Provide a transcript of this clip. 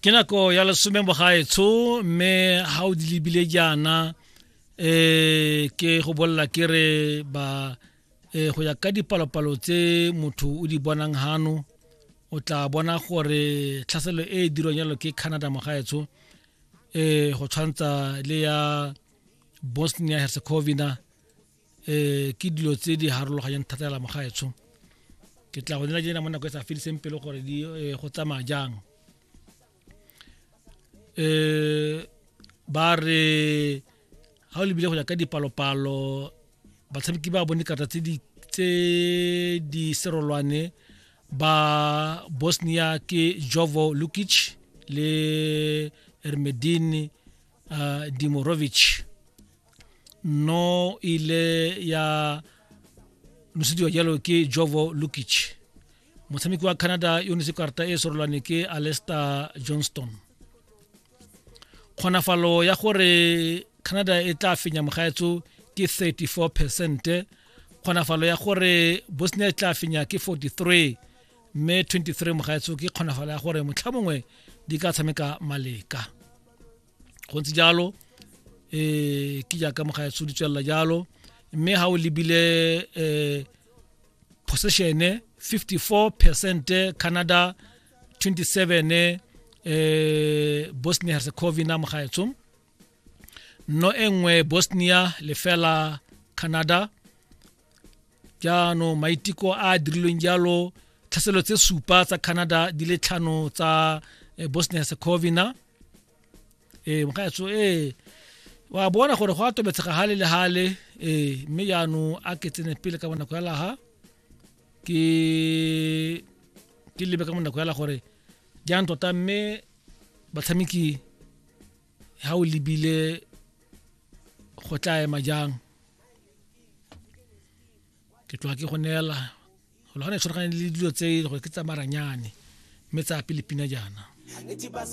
ke nako ya lesome bogaetsho mme ga o di lebile jaana um ke go bolela ke re ba um go ya ka dipalopalo tse motho o di bonang gano o tla bona gore tlhaselo e e dirwang jalo ke canada mogaetsho um eh, go tshwantsha le ya bosnia herzegovina um ke dilo tse di harologanyang thata ya lamogaetsho ke tla go nela jena mo nako e sa fediseng pelo gore di eh, go tsamaya jang um ba re ga o lebile go ya ka dipalopalo batshameki ba bone karata tse di tse di serolwane ba bosnia ke jovo lukic le ermedin uh, dimorovic no ile ya nosediwa jalo ke jovo lukic motshameki wa canada yo netse karata e sorolwane ke alester johnston kgonafalo ya gore canada e tla fenya mogaetso ke 34 percent kgonafalo ya gore bosnia e tla fenya ke 43 mme 23 mogaetso ke kgonafalo ya gore motlha mongwe di ka tshameka maleka go ntse jalo um ke jaaka mogaetsho di tswelela jalo mme ga o lebile um possessione 54 percent canada 27 eh Bosnia Herzegovina mogaetsho no engwe Bosnia lefela Canada jaanong maiteko a a dirilweng jalo tlhaselo tse supa tsa canada di le tlhano tsa eh, bosnia herzegovina e eh, mokgaetso e eh, wa bona gore go a tobetshega gale le gale ee mme jaanong a ke tsene pele ka bonako ya laga ke ke lebe ka bonako ya la gore jang tota mme batshameki ha o lebile go tla ema jang ke tloa ke go neela go lwana e tshwaragane le dilo tse gore ke tsamaranyane mme tsa pele pina jaana